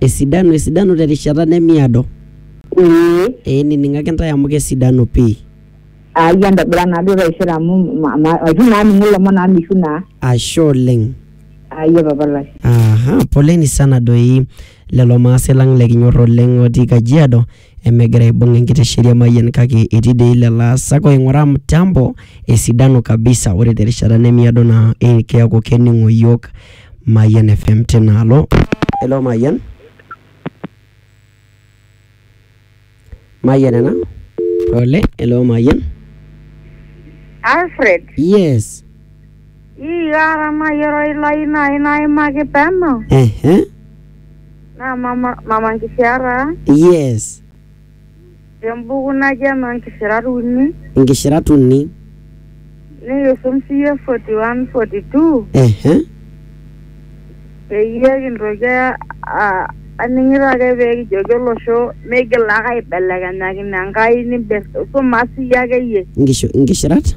Esidanu, esidanu te rishata nemiado. Ee. Ee nining'aki intae amu kesidanu pii. Ai entobira naa duo taisere amu ma- ma- maitu naa aningu ilomon amu mishu naa. Ashe oleng. Ayia papa lai. Aha, poleni sana doi lelo maase lang lekinyor oleng otii Kajiado Emegira aibung enkitesheni emayian kake etii dei lelo aasak oing'uraa mtambo esidanu kabisa ore terishata nemiado naa eh, keaku kening'o iyiook Mayian FM tinaalo. Hello Mayian. Mayian ena. Pole, hello Mayian. Alfred, Yes. Ii ara mayiolo ilai nai naimaki peno ehe naa mama, mama nkisiaraa yes tembuku naji enoo nkisirat uni inkishirat uni nikisum siiyie 41 42 ehe peyie kintoki a- a- aning'ito ake pee kijoki olosho meigila ake aibelekenyakino Enkai nimbir suma siiyie akeyie inkishu- inkishirat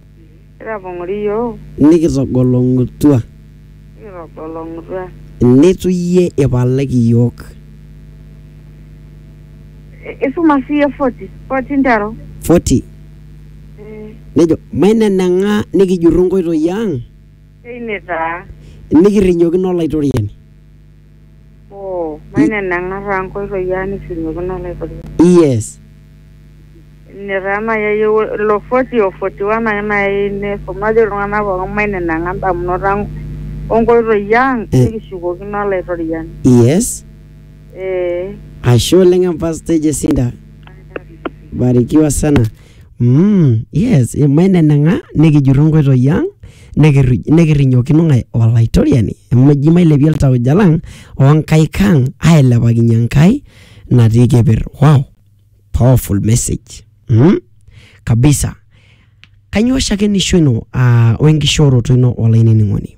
Kitapong'ori iyiook. Nikitogolong'utua. Nikitogolong'utua. Neitu iyie ipalaki iyiook. Isuma sii iyie forty, forty nteru. Forty. Nejo, Maineneng'a nikijurru nkoitoi ang. Teine taa. Nikirrinyokino Olaitoriani. Oh, maineneng'a taa nkoitoi ang nishumiokino Olaitoriani. Yes. Ine taa nai ayieu ilo 40 o 41 ake nai ayieu niisum najo iltung'anak pookin maineneng'a indamunot ang o nkoitoi ang Eh. nikishukokino Olaitoriani. Yes. Ee. Ashe oleng Empastai Jesinta. Barikiwa sana. Mm, yes, maineneng'a nikijurru nkoitoi ang nikirri- nikirrinyokino ng'ae olaitoriani amu eji mailepie iltauja lang onkaik ang ailepakinye Enkai natii keper. Wow, powerful message. Mm, kabisa. Kanyoo shakenisho ino ah, wenkishooroto ino olainining'oni?